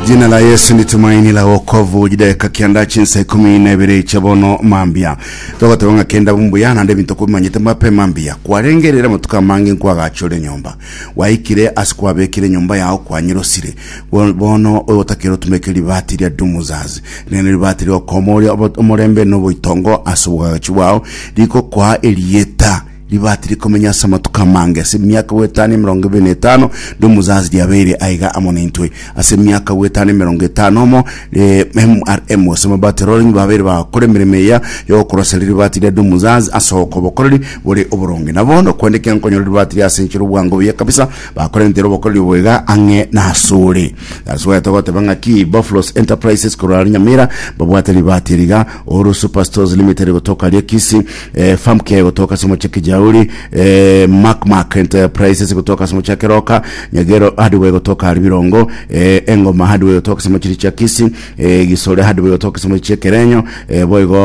Jina la Yesu ni tumaini la wokovu jideka kianda chinsa ikumi na ibere cha bono mambia togoteba ng'a kenda bumbuya nande binto kubimanyete mbape mambia kwarengerera matuko amange nkwagachore nyomba waikire ase kwabekire nyomba yao kwanyirosire Bo- bono ogotakera otumeke ribati ria dumuzazi nene ribati riokomoria omorembe noboitongo ase obogagachi bwao rikokwaa erieta Ribati rikomenya ase amatuko amange, ase emiaka goetania emerongo ebere na etano, ndi omosaasi riabeire aiga amo naintwe. Ase emiaka goetania emerongo etano omo, MRM, gose amabati arorenyi babeire bagakora emeremo eya y'ogokorosera ribati ria ndi omosaasi ase okobokoreri bore oboronge. Na bono, kende kiankonyora ribati ria ase enchera obwango buya kabisa, bakorentera obokoreri obo iga ang'e nasore. That's why togoteba ng'aki Boflos Enterprises korwa are Nyamira, babwate ribati eri iga, Ouru Superstores Limited gotoka aria Kisii, eh, Famke gotoka ase omochie Kijauri, eh, Mark Mark Enterprises gotoka ase omochie Keroka, Nyagero Hardware gotoka ari Birongo, eh, Engoma Hardware gotoka ase omochie chia Kisi, eh, Gisore Hardware gotoka ase omochie Kerenyo, eh, boigo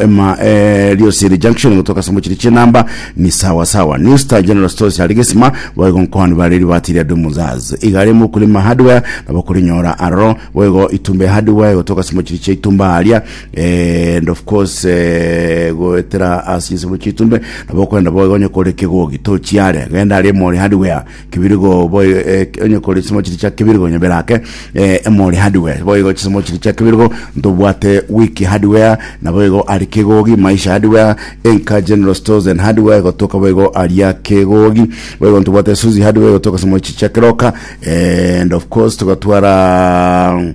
ema eh, Liosiri Junction gotoka ase omochie chia Namba, ni sawa sawa. New Star General Stores ari Gesima, boigo Nkohani bareri batiria Dumuzaz. Igare Mukulima Hardware nabo korinyora aroro, boigo Itumbe Hardware gotoka ase omochie chia Itumba aria, Eh, and of course eh, goetera ase insemo chitumbe nabo okorenda boiga onye kore kegogi tochiare genda ari emori hardware kibirigo boi eh, onye kore chisemo chiri chia kibirigo nyebera ake eh, emori hardware boigo chisemo chiri chia kibirigo ntobwate wiki hardware nabo igo ari kegogi maisha hardware enka general stores and hardware gotoka boigo aria kegogi boigo ntobwate suzi hardware gotoka chisemo chiri chia keroka eh, and of course tugatwara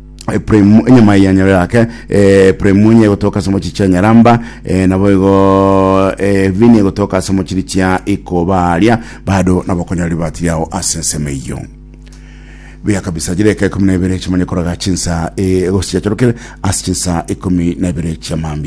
Epraim enyama ya nyaro yake eh, Epraim enye egotoka ase mochiri chia nyaramba eh, nabo igo eh, vini egotoka ase mochiri chia ikobaria bado nabo okonyora ribati riao ase ensemo eyio buya kabisa jire eka ikumi na ibere chimanye koraga chinsa eh, egosi chiachorokire ase chinsa ikumi na ibere chiamambia